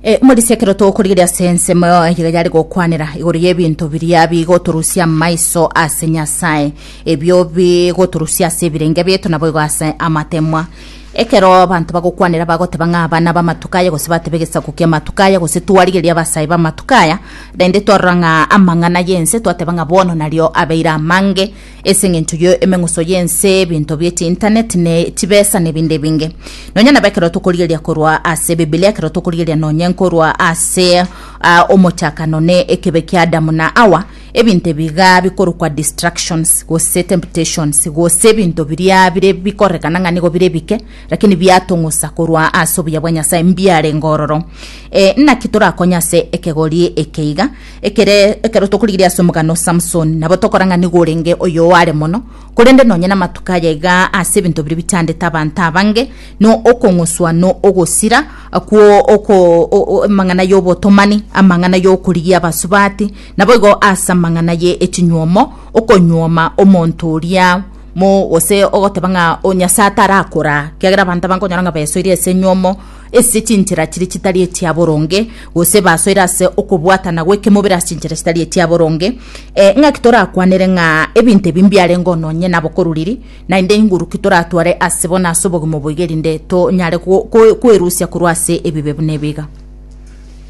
E, morisia ekero togokorigeria ase ensemo iga yare gokwanera igoro y'ebinto biria bigotorusia amaiso ase nyasaye ebio bigotorusia ase ebirenge bieto nabo igo ase amatemwa ekero abanto bagokwanera bagoteba ng'a abana b'amatuko aya gose bateba egesaku ki'amatuko aya gose twarigeria abasae b'amatuko aya rende twarora ng'a amang'ana y'ense twateba ng'a bono nario abeire amange Ase engencho ye emeng'uso y'ense, ebinto bie chinternet, ne chibesa, ne ebinde ebinge. Nonya nabo ekero tokorigereria korwa ase Ebibilia, ekero tokorigereria nonye nkorwa ase ah, omochakano ne ekebe kia Adamu na Hawa, ebinto ebiga bikorokwa distractions gose temptations gose ebinto biria bire bikorekana ng'a nigo bire bike lakini biatong'usa korwa ase obuya bwa Nyasaye mbiarenge ororo. Eh, naki torakonye ase ekegori eke iga Ekere ekero tokorigereria ase omogano o Samsoni, nabo tokora ng'a nigo orenge oyo oare mono, korende nonya namatuko aya iga ase ebinto biria bichandete abanto abange, no okong'uswa no ogosira kwo oko o- o- amang'ana y'obotomani, amang'ana y'okorigia abasubati, naboigo ase amang'ana ye echinyuomo, okonyuoma omonto oria mo gose ogoteba ng'a o Nyasae tarakoraa, kiagera abanto abange onyora ng'a besoirie ase enyuomo, ase chinchera chiria chitari echia boronge, gose basoire ase okobwatana gw'ekemobere ase chinchera chitari echia boronge, eh, ng'aki torakwanere ng'a ebinto ebi mbiarengeo nonye nabokoruriri, naende inguru ki toratware ase bo nase obogima oboiga erinde tonyare ko- ko- kwerusia korwa ase ebibe buna ebi iga.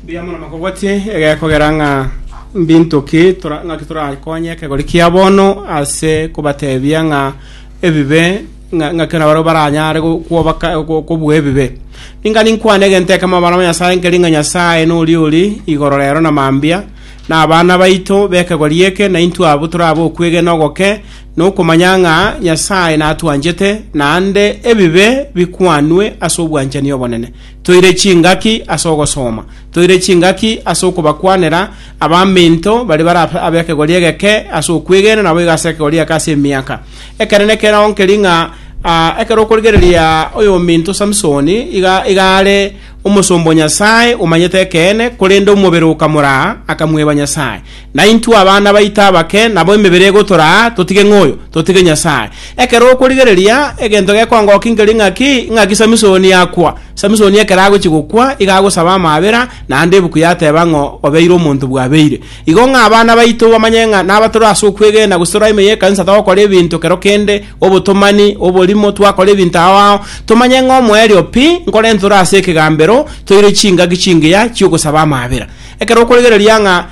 Mbuya mono makogotie egekogera ng'a mbinto ki tora- ng'aki torakonye ekegori kia bono ase kobatebia ng'a ebibe ng'a ng'a kera barabwo baranyare go- kwoba ka- go- kobua ebibe. Ninga ninkwane egento ekemo abana ba Nyasae nkeri ng'a Nyasae noria ori igoro rero na mambia, na abana baito b'ekegwa ri'eke naintwe abwo tore ab'okwegena ogoke, na okomanya ng'a Nyasae natwanchete, naende ebibe bikwanwe ase obwanchani obonene. Toire chingaki ase ogosoma, toire chingaki ase okobakwanera abaminto baria bare abe- ab'ekegori egeke ase okwegena, naboigo ase ekegori egeke ase emiaka. Ekero nekero nkeri ng'a ah, ekero okorigereria oyominto Samsoni iga iga are omosomba o Nyasae omanyete ekeene, korende omobere okamoraa, akamweba Nyasae. Naintwe abana baito abake nabo emebere egotoraa, totige ng'oyo, totige Nyasae. Ekero okorigereria egento gekongokia nkeri ng'aki, ng'aki Samsoni akwa. Samsoni ekero agochia gokwa, iga agosaba amaabera, naende ebuku yateba ng'o obeire omonto bwabeire. Igo ng'a abana baito bamanye ng'a naba tore ase okwegena, gose tore ime y'ekanisa togokora ebinto kero kende, obotomani, oborimo, twakora ebinto ao ao, tomanye ng'a omoerio pi nkorente ore ase ekegambero, toire chingaki chingiya chi'ogosaba amaabera. Ekero okorigereria ng'a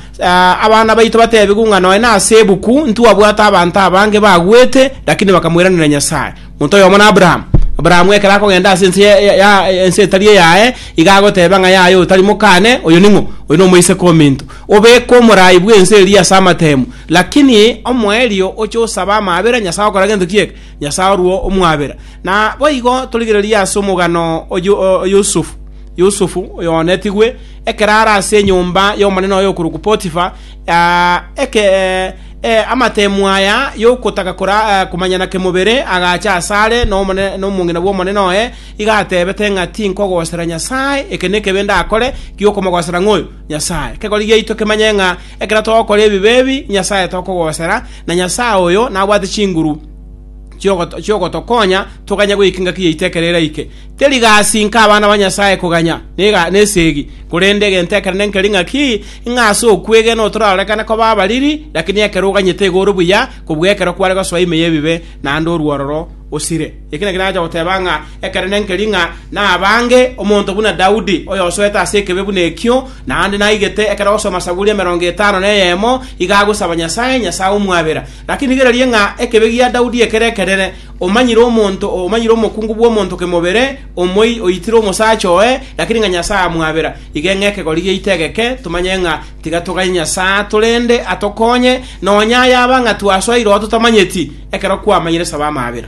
abana baito batebigwe ng'a nonya nase ebuku ntwabwate abanto abange bagwete, lakini bakamweranera Nyasae, Monto oyomo n'Abrahamu. Abrahamu ekero akogenda ase ense ya- ya- ya- ense etari eyaye, iga agoteba ng'a yaye otari mokane, oyo ning'o? Oyo nomoiseke ominto. Obekwe omorai bw'ense eria ase amatemu. Lakini omoerio oche osabe amaabera, Nyasae ogokora gento kieka? Nyasae orwo omwabera. Na boigo torigererie ase omogano o Yo- o- o Yusufu. Yusufu, oyo onetigwe, ekero are ase enyomba y'omonene oye okorokwa Potifa, Aa, eke, eh, amateemu aya y'ogotaka kora, eh, komanyana kemobere agacha asare nomone, nomong'ina bw'Omonene oye, iga ateebete ng'a tinkogosera Nyasae, eke nekebe ndakore gi'okomogosera ng'oyo, Nyasae. Ekegori giaito kemanye ng'a ekero togokora ebibe ebi, Nyasae tokogosera, na Nyasae oyo nabwate chinguru chiogotokonya toganye goika engaki yaito ekero eraike. Teri gasi inka abana ba Nyasae koganya nesegi, korende egento ekero nenkeri ng'aki, ng'a ase okwegena otorarorekane koba abariri, lakini ekero oganyete igo ore buya kobua ekero kware gosoa ime y'ebibe, naende orwororo osire. Eki nakio nacha goteba ng'a ekero nenkeri ng'a nabange omonto buna Daudi, oyosoete ase ekebe buna ekio, naende naigete ekero agosoma Saburi emerongo etano neyemo, iga agosaba Nyasae, Nyasae omwabera. Lakini rigereria ng'a ekebegia Daudi ekere ekerere, Omanyire omonto, omanyire omokungu bw'omonto kemobere, omoyii oitire omosacha oye, lakini ng'a Nyasae amwabera. Iga ng'a ekegori giaito egeke tomanye ng'a tiga toganye Nyasae atore ende atokonye, nonya yaba ng'a twasoa iroho totamanyeti, ekero kwamanyire saba amabera.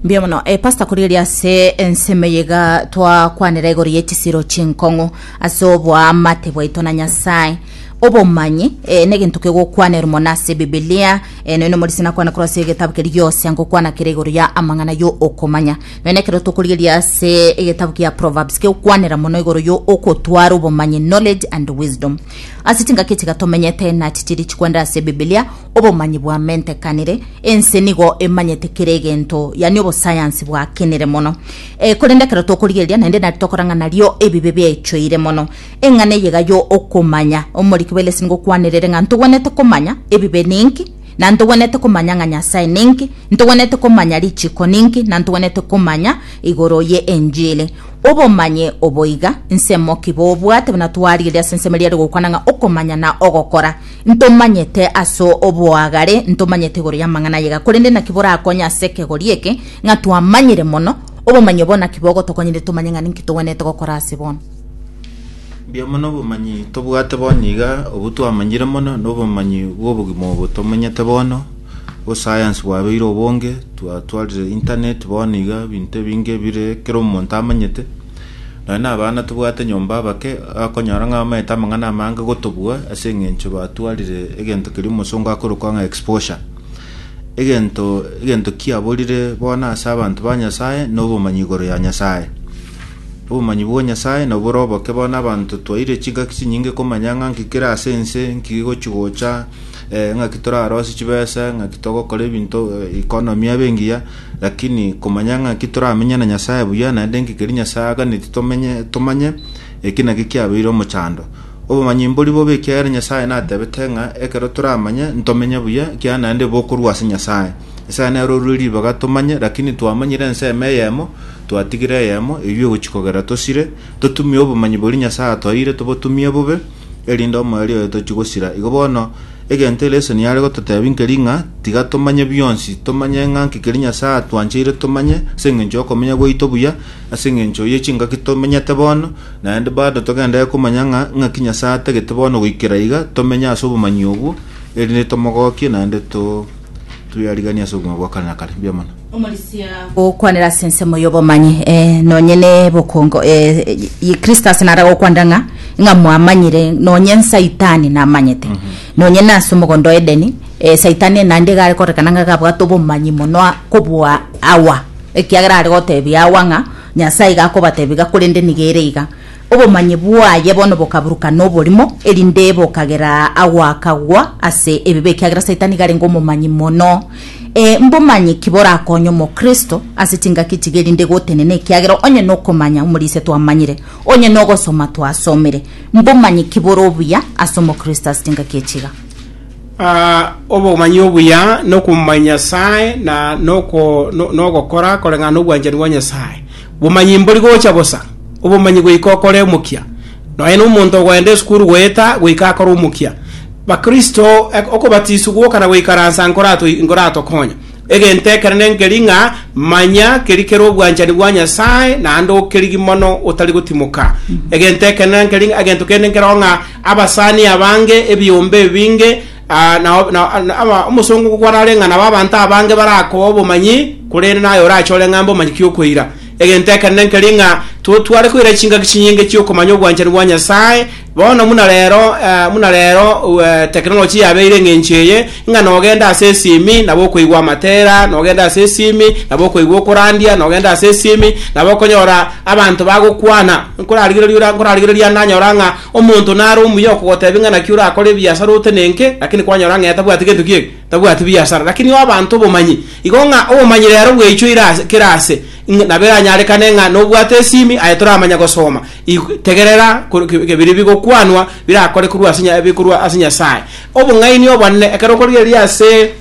Mbuya mono eh, pastor kori eria ase ensemo eye iga twakwanera igoro ye chisiro chinkong'u ase oboamate bwaito na Nyasae. Obomanyi eh, negento kegokwanerwa mono ase Ebibilia. Eh, nonya omorisia nakwana korwa ase egetabu keri gionsi anga okwana kere igoro ya amang'ana yo okomanya. Nonya ekero tokorigeria ase egetabu kia Proverbs kegokwanera mono igoro yo okotwara obomanyi, knowledge and wisdom. Ase chingaki chiga tomenyete nachi chiri chikwendera ase Ebibilia, obomanyi bwamentekanire, ense nigo emanyete kera egento, yani obosayansi bwakenire mono. Eh, korende ekero tokorigereria, naende nari tokorang'a nario ebibe biaichoire mono. Eng'ana eye iga y'okomanya. Omoriki bw'elesi nigo okwanirire ng'a ntogwenerete komanya ebibe ninki, na ntogwenerete komanya ng'a Nyasae ninki, ntogwenerete komanya richiko ninki, na ntogwenerete komanya igoro ye enjiri. Obomanyi obo iga nsemo ki bobwate buna twarigeria ase ensemo eria ere gokwana ng'a okomanya na ogokora. Ntomanyete ase oboagare, ntomanyete igoro y'amang'ana aya iga, korende naki borakonye ase ekegori eke ng'a twamanyire mono? Obomanyi obo naki bogotokonyire tomanye ng'a ninki togwenerete gokora ase bono? Mbuya mono obomanyi tobwate bono iga, obwo twamanyire mono nobomanyi bw'obogima obo tomanyete bono, osayansi bwabeire obonge, twatwarire internet bono iga ebinto ebinge bire ekero omonto amanyete, nonya na abana tobwate nyomba abake, akonyora ng'a bamaete amang'ana amange gotobua ase eng'encho batwarire egento keria omosongo akorokwa ng'a exposure. Egento egento kiaborire bono ase abanto ba Nyasaye, nobomanyi igoro ya Nyasaye. Obomanyi bwa Nyasae nobore oboke bono abanto twaeire chingaki chinyinge komanya ng'a nki kere ase ense, nki gigochi-gocha, eh, ng'aki torarosie chibesa, ng'aki togokora ebinto eh, economy abe engiya, lakini komanya ng'aki toramenye na Nyasae buya, naende nki keri Nyasae aganeti tomenye tomanye, eki naki kiabeire omochando. Obomanyi mbori bobe ekiagera Nyasae natebete ng'a ekero toramanye ntomenye buya, ekiagera naende bokorwa ase Nyasae. Esaya nero orure ribaga tomanye, lakini twamanyire ensemo eyemo, twatigire eyemo, eyio egochia kogera tosire, totumie obomanyi boria Nyasae atwaeire tobotumie bobe, erinde omoerio oye tochie gosira. Igo bono, egento eria Yeso niare gototebia nkeri ng'a tiga tomanye bionsi, tomanye ng'a nki keria Nyasae atwancheire tomanye, ase engencho y'okomenya gwaito buya, ase engencho ye chingaki tomenyete bono, naende bado togenderere komanya ng'a ng'aki Nyasae atagete bono goikera iga, tomenye ase obomanyi obwo, erinde tomogokie naende to. Toyariganie ase obogima bwa kare na kare. Mbuya mono. Omorisia gokwanera ase ensemo y'obomanyi, eh, nonye nebokongo, eh, eh, Kristus nara gokwanera ng'a ng'a mwamanyire nonye nsaitani namanyete nonye nase omogondo wa Edeni eh, saitani naende iga are korekana ng'a gabwate obomanyi mono a- kobua Hawa ekiagera are gotebia Hawa ng'a Nyasaye iga akobatebia iga korende niga ere iga Obomanyi bwaye bono bokaburuka noborimo, erinde bokagera agwo akagwa ase ebibe ekiagera Satan nigo arenge omomanyi mono. Ee, mbomanyi ki borakonye omokristo ase chingaki echiga erinde gotenena ekiagera onye nokomanya omorisia twamanyire, onye nogosoma twasomire? Mbomanyi ki bore obuya ase omokristo ase chingaki echiga? Aa, obomanyi obuya nokomanya Nyasaye na noko- no- nogokora koreng'ana nobwanchani bwa Nyasaye. Bomanyi mbori gocha bosa, obomanyi goika okore omokia. Nonya nomonto ogoenda esukuru goeta goika akore omokia. Bakristo, okobatiswa gwoka na goikaransa nkoratokonye. Egento ekero nenkeri ng'a manya keri kere obwanchani bwa Nyasae naende okerigi mono otari gotimoka. Egento ekero nenkeri ng'a egento kende nkeroo ng'a abasani abange ebiombe ebinge na omosongo kwarare ng'a nabo abanto abange barakoa obomanyi, korende naye orachore ng'a mbomanyi ki okoira. Egento ekenene nkeri ng'a totware koira chingaki chinyinge chi'okomanya obwanchani bwa Nyasae. Bono buna rero buna rero technology yabeire eng'encho eye, ng'a nogenda ase esimi nabo okoigwa amatera, nogenda ase esimi nabo okoigwa okorandia, nogenda ase esimi nabo okonyora abanto bagokwana, nkorarigereria ora nkorarigereria ande anyora ng'a Omonto nare omuya okogotebia ng'a naki orakore ebiasara otenenke, lakini kwanyora ng'a tabwati gento ki'ege, tabwati biasara. Lakini oe abanto obomanyi, igo ng'a obomanyi rero bweichoire ase kera aase, ng'a nabo eranyarekane ng'a nobwate esimi, aye toramanya gosoma, ik, tegerera kor, ki, biria bigokwanwa birakore korwa ase, bikorwa ase Nyasae. Obong'aini obonene, ekero okorigereria ase.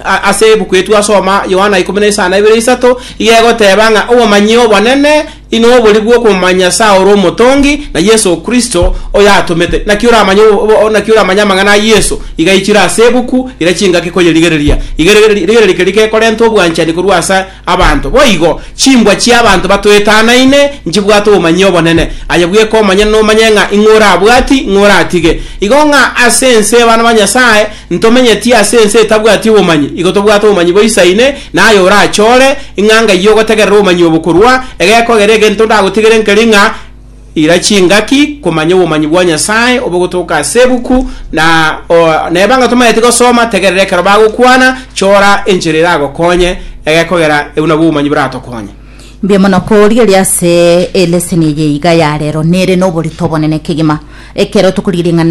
A- ase ebuku eye twasoma yohana ikomi na isano ebere isato iga egoteba ng'a obomanyi obonene ino obori bw'okomanya nyasaye ore omotongi na yesu kristo oyo atomete naki oramanye obo- obo- naki oramanye amang'ana a yesu iga ichire ase ebuku ira chingaki koyerigereria Igere- rigereria keri gekorenta obwanchani korwa asa Abanto. Boigo, chimbwa chi'abanto batoetanaine nchibwate obomanyia obonene, aye bweka omonyene nomanye ng'a ing'o orabwati, ing'o oratige. Igo ng'a ase ense abana ba Nyasae ntomenyeti ase ense etabwati obomanyi, igo tobwate obomanyi boisaine naye orachore ing'anga eyio ogotegerera obomanyi obo korwa egekogera egento ndagotigere nkeri ng'a Ira chingaki komanya obomanyi bwa Nyasae obo gotoka ase ebuku, na neba ng'a tomaeti gosoma, tegerera ekero bagokwana, chora enchera eragokonye, egekogera ebu nabwo obomanyi boratokonye. Mbuya mono korigeria ase eleseni eye iga ya rero. Nere noborito obonene kegima ekero tokorigia ring'ana eri.